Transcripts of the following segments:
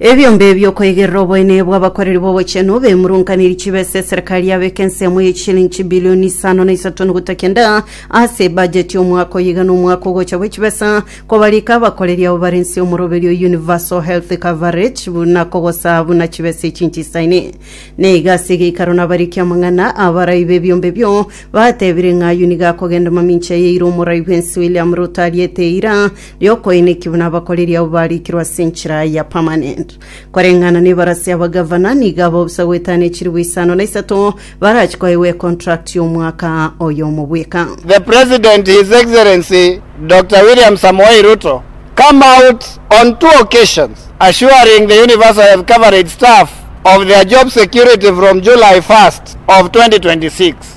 Ebiombe bi'okoigerera oboene bw'abakoreri b'obochenu bemurunkaniri chibesa eserekari yabeka ensemo ye chilingi chibilioni isano na isato noguta kenda ase ebajeti y'omwaka oyo iga nomwaka ogocha bwe chibesa kobarika abakoreri abo bare nse y'omoroberio Universal Health Coverage buna kogosaa buna chibesa echi nchisaine. Na iga ase egeikaro nabarikia amang'ana abarai b'ebiombe ebio batebire ng'a ayio nigo akogenda mamincha yaeire omorai bw'ense William Ruto ariete eira y'okoineki buna abakoreri abwo barikirwe ase enchera ya permanent. Koreng'ana nebarase y'abagavana, nigo abao bosa goetania chilifu isano na isato barache koegwa econtract y'omwaka oyomo bweka. The President, His Excellency Doctor William Samoei Ruto, come out on two occasions assuring the universal health coverage staff of their job security from July 1st of 2026.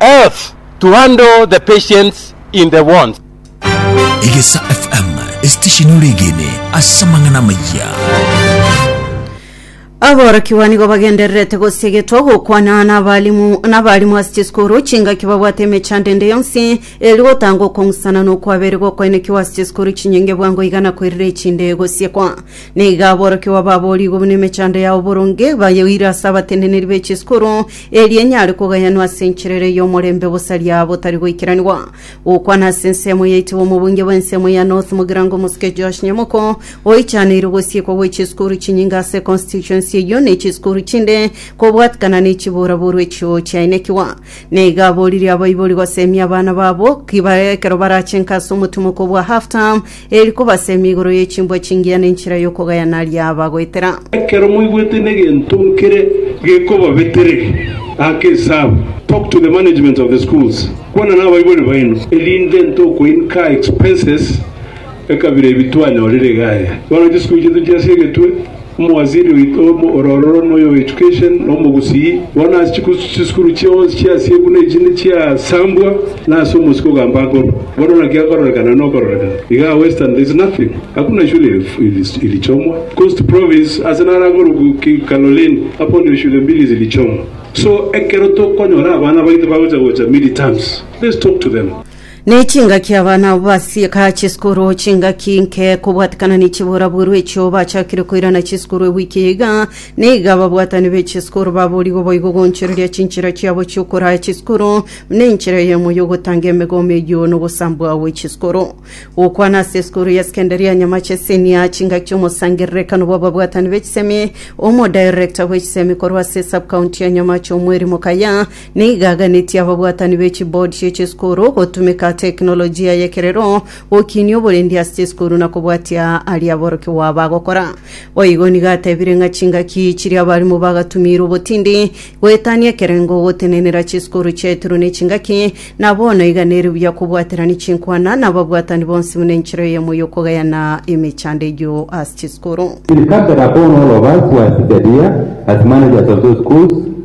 Earth to handle the patients in the wards. Egesa FM, esitesheni oregene ase amang'ana amayia. Aborokigwa nigo bagendererete gosegetwa gokwana n'abalimu n'abalimu ase chisukuru chingaki babwate emechando ende yonsi eri gotanga okong'usana na okwabere gokoenekiwa ase chisukuru chinyinge bwango iga na koirira echinde gosiekwa. Nigo aborokigwa baboorigwe buna emechando yao boronge bayoire ase abateneneri be chisukuru Eri enyare kogayanwa ase enchera ere y'omorembe bosaria botari goikeranigwa. Gokwana ase ensemo yaito bw'omobunge bw'ensemo ya North Mugirango Omosuke Josh Nyamoko oichaneirwe gosiekwa gwe chisukuru chinyinge ase constituency eyio ne chisukuru chinde kobwatikana ne chiboraboru echio chiainekigwa. Neiga aboririe abaibori gosemia abana babo ki bare ekero barachenka ase omotumoko bwa half term Eri kobasemi igoro ye chimbwa chingiya na enchera y'okogayana riabagoetera. Ekero moigwete negento nkere gekobabetereria ake esabu, talk to the management of the schools, kwana nabaibori baino, erinde ntokoincar expenses ekabira ebi twanyorire iga aya. Bono chisukuru chiaito chia ase egetwe Omowaziri oito ororo noyo o Education na omogusii, bono ase chisukuru chionsi chi'Asia buna echi nichiasambwa, na ase omosike ogamba akorwa. Bono naki akororekana na okororekana iga a Western there is nothing, hakuna shule ilichomwa. Coast Province ase naro akorokwa Kaloleni hapo ndio shule mbili zilichomwa. So ekero tokonyora abana baito bagocha gocha mid terms, let's talk to them. Ne chingaki abana abo basieka chisukuru chingaki nke kobwatikana ne chiburaburu echio bachakire koirana chisukuru ewiki eye iga, na iga ababwatani be chisukuru baborigwe boigo goonchoreria chinchera chiabo chiokoraya chisukuru buna enchera eyemo y'ogotanga emegomo eyio nogosambwa gwe chisukuru. Gokwana ase esukuru ya sekendari ya Nyamache Senior, chingaki chiomosangererekano bw'ababwatani be chisemi, omodirector bwe chisemi korwa ase sub-county ya Nyamache Omweri Mokaya, Nigo aganetie ababwatani be chibodi chie chisukuru gotumeka teknolojia y'ekerero gokinia oborendi ase chisukuru na kobwatia aria aborokigwa bagokora. Boigo nigo atebire ng'a chingaki chiria abarimu bagatumiire obotindi goetania ekerengo gotenenera chisukuru chiaetirwe nechingaki, na bono iga nere buya kobwaterania chinkwana nababwatani bonsi buna enchera eyemo y'okogayana emechando eyio ase chisukuru. It is something upon all of us who are seated here as managers of those schools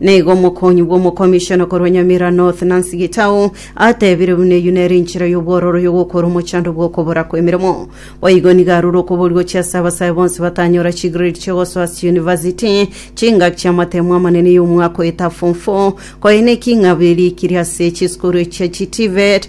Nigo omokonyi bw'omokomishona korwa Nyamira North, Nancy Gitau, atebire buna eyio nere enchera y'obwororo y'ogokora omochando bw'okobora kw'emeremo. Boigo nigo arure okoboria gochia ase abasae bonsi batanyora chigrade chi'ogosoa ase chiyunivasiti, chingaki chi'amatemo amanene y'omwaka oyoita form four, koine eking'aberi ekiria ase chisukuru echia chiTVET,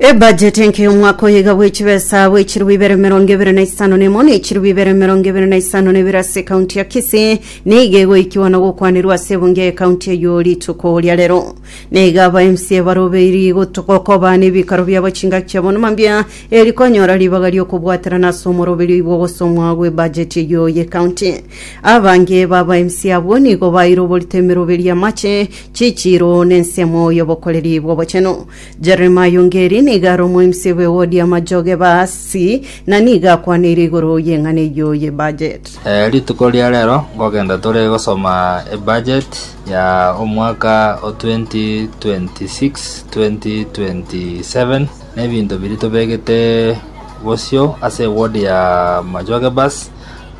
Ebajeti enke y'omwaka oyo iga bw'echibesa bw'echirubu ibere emerongo ebere na isano na emo na echirubu ibere emerongo ebere na isano na ibere ase ekaunti ya Kisii nigo egoikigwa na gokwanerwa ase ebunge y'ekaunti eyio rituko ria rero. Nigo aba MCA barobeiri gotu- gokoba n'ebikaro biabo chingaki chiabo numa mbuya eri konyora ribaga ri'okobwaterana ase omoroberio oigwa ogosomwa gw'ebajeti eyio y'ekaunti. Abange b'aba MCA abwo nigo baeire oborito emeroberio y'amache Chichiiro n'ensemo y'obokoreri bw'obochenu. Jeremiah Ongeri nigo are omoemisi bwe wodi ya Majoge Baasi na nigo akwaneire igoro y'eng'ana eyio y'ebudget. Rituko ria rero nkogenda tore gosoma ebudget ya omwaka o 2026-2027 na ebinto biria tobegete bosio ase eward ya Majoge Bass.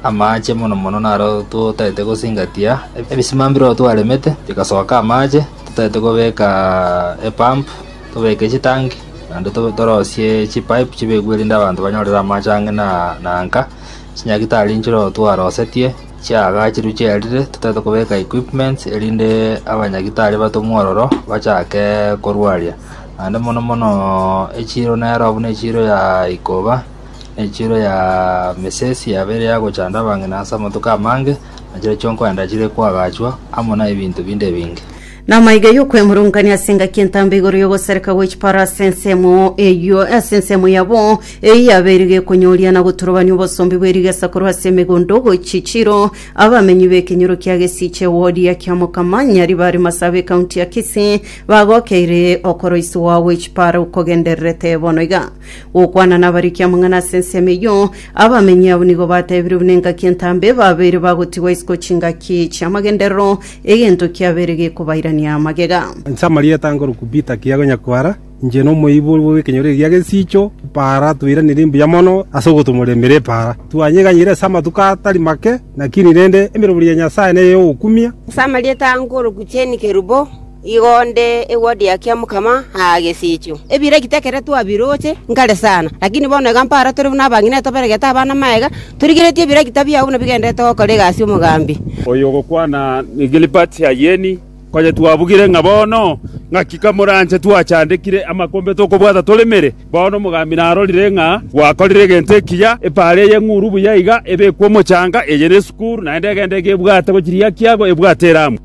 Amaache mono mono naro totaete gosingatia, ebisima mbireo twaremete bigasoka amaache, totaete kobeka epump, tobeke chitanki, naende torosie chipipe chibekwe erinde abanto banyorere amaache ang'e na na nka, chinyagitari nchireo twarosetie, chiagachirwe chiarire, totaete kobeka equipments erinde abanyagitari batomwe ororo bachake korwaria, naende mono mono echiro nero buna echiro ya ikoba. Enchero ya mesesi yabo ere ya gochanda abang'ina ase amatuko amange, na chire chionkoenda chire koagachwa, amo nebinto binde ebinge. Namaiga y'okwemurungania ase engaki entambe igoro y'ogosareka gwe chipara ase ensemo eyio ase ensemo yabo eyio yabeirwe gekonyooria na goturubania obosombi bwe rigesa korwa ase emegondo gochia chiro abamenyi b'ekenyoro kia gesiche ewodi ya Kiamokama Nyaribari Masaaba ekaunti ya Kisii bagokeire okoroiswa gwe chipara okogendererete bono iga. Gokwana nabarikia amang'ana ase ensemo eyio, abamenyi abwo nigo bateebire buna engaki entambe babeire bagotigwa isiko chingaki chi'amagenderero, egento kiabeire gekobairania magega. Inche amarieta nkorokwa Peter Kiago Nyakwara, inche nomoiborwa bw'ekenyoro egia Gesiicho Epaara twairanire mbuya mono ase ogotumorera emeeri Epaara. Twanyeganyire ase amatuko atari make, lakini rende emerobori ya Nyasae neye y'ogokumia. Ase amarieta nkorokwa Jane Kerubo. Igo onde ewodi ya Kiamokama aa gesiichio, ebira egitekeretwe abiroche nkare sana. Lakini bono iga mpara tore buna abang'ina etoberegete abana magega, torigeretie ebira egitabia abwo buna bigendererete gokora egasi y'omogambi. Oyo ogokwana Gilbert Ayeni, konya twabugire ng'a bono ng'aki kamoranche twachandekire amakombe tokobwata toremere, bono omogambi narorire ng'a gwakorire egento ekiya, epaara eye ng'uru buya iga ebekwe omochanga, eye nesukuru, naende egende iga ebwate gochiria kiago ebwate eramu.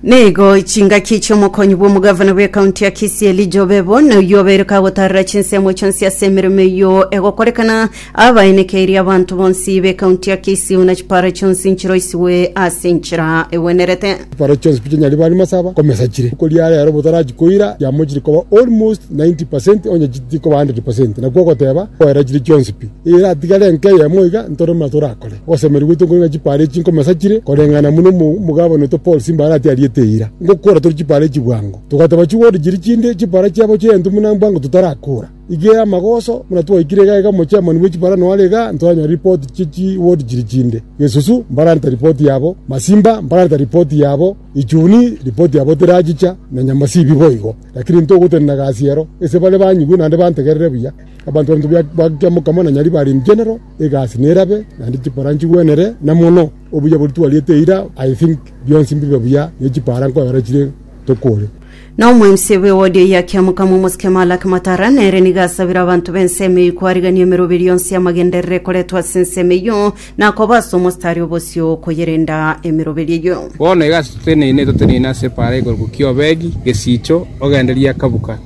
Nigo chingaki chi'omokonyi bw'omogavana bw'ekaunti ya Kisii Elijah Obebo na oyio obeire kagotarera chinsemo chionsi ase emeremo eyio egokorekana abaenekeirie abanto bonsi b'ekaunti ya Kisii buna chipara chionsi nchiroisigwe ase enchera egwenerete. Chipara chionsi pi chinyarire bare masaba komesachire. Riko ria rero botarachi koira chiamochire koba almost 90 percent onye chitikoba 100 percent. Nakwo ogoteba koera chire chionsi pi. Eira atigare enka eyemo iga ntore buna torakore. Gosemeria gwaito nkore ng'a chipaara echi nkomesa chire koreng'ana na buna omogabani oito Paul Simbaara atiariete eira, Ngokora tore chipaara echi bwango. Togateba chigoro chiri chinde, chipaara chiabo chi'egento buna mbwango totarakora. Igere amagoso buna twaikire iga iga omochairman bwe chipaara noare iga ntoranyora ripoti chie chigoro chiri chinde. Gesusu mbarareta ripoti yabo, Masimba mbarareta ripoti yabo, Ichuni ripoti yabo terachicha, na Nyamasibi boigo. Lakini ntogotenena gasi ero, ase bare banyigwe naende bantegerere buya. Abanto baminto ba Kiamokama na Nyaribari in general, egasi nerabe, naende chipara nchigwenere, na mono obuya boria twariete eira, I think bionsi mbibe buya, ne chipara nkoera chire tokore. Na omwensi bw'ewodi eyio akiamoka momosike Malaki Matara, nere nigo asabire abanto b'ensemo eyio koarigania emeroberio yonsi y'amagenderero ekoretwe ase ensemo eyio, na akoba ase omostari o bosio koyerenda emeroberio eyio. Bono egasi toteneine, toteneine ase epaara igoro gokia Obedi, gesiicho, ogendererie akabuka.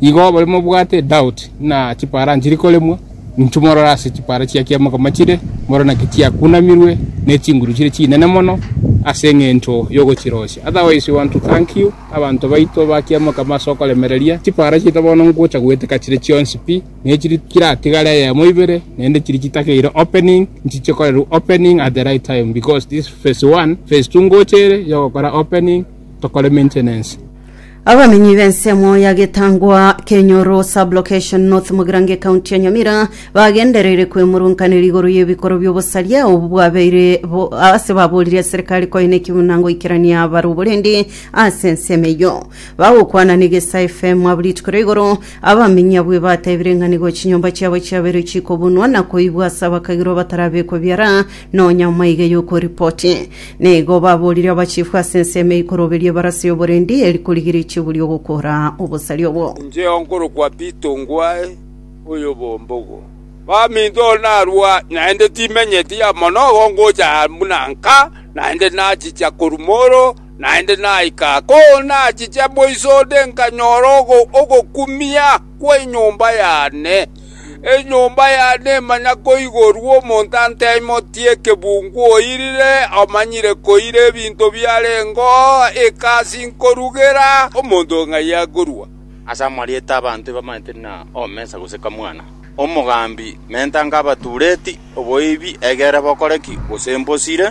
Igo abare mobwate edoubt ng'a chipara nchiri koremwa, inchuo morore ase chipara chia kiamokama chire, morore naki chiakunamirwe ne chinguru chire chinene mono ase engencho yogochiroisia. Otherwise we want to thank you abanto baito ba kiamokama ase okoremereria chipara chiaito bono ngocha goeteka chire chionsi pi, ne chiri keratigare eyemo ibere naende chiri chitakeirwe opening nchiche korerwa opening at the right time because this phase one, phase two ngocha ere yogokora opening tokore maintenance. Abamenyi b'ensemo ya Getangwa, Kenyoro Sub-Location North Mugirango Ekaunti ya Nyamira bagendereire kwemurunkanera igoro y'ebikoro by'obosaria obo bwabeire bo ase baboririe serikali koe nekiguna ngoikerania abare oborindi ase ensemo eyio. Bagokwana n'Egesa FM abwo rituko ria igoro, abamenyi abwo batebire ng'a nigo chinyomba chiabo chiabeire chikobunwa na koibwa ase abakagirwa batarabekwa biara Nonya moige yokoripoti. Nigo baborire abachifu ase ensemo eyio koroberia ebarasi y'oborendi eri korigia richigu ri'ogokora obosari obwo. Incheo nkorokwa Pito Ngwae oyobombogo. Baminto narua naende timenyeti ya monogo ngocha buna nka naende nachicha korumoro naende naika ko nachicha boisode nkanyora ogokumia kwe nyomba yane. Enyomba ya neema na koigorwa omonto anteimotie ekebungu oirire omanyire koira ebinto biarengo egasi nkorugera omonto ng'ai akorua. Ase amarieta ’abanto ebamanyete na omesa gose kamwana, omogambi, mentanka abatuureti, oboibi, egere bokore ki, gose mbosire,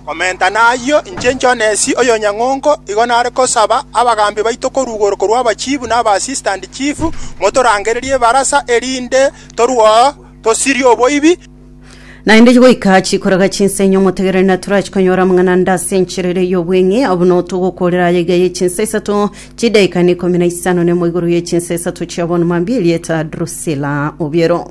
Komenta nayio, inche Jonesi, oyonyang'ongo, igo nare gosaba abagaambi baito koruugoro korwa abachiifu na abasistant chief, motorangererie ebarasa, erinde torwao, tosirie oboibi, Naende goika chikoraga chinsa inye omotegereri naturachi konyora amang'ana ande ase enchera ere y'obweng'e, abwo notogokoorera aya iga y'echinsa isato chidaika neikomi na isano nemo igoro y'echinsa isato chia bono mambia, erieta Drusila obiero.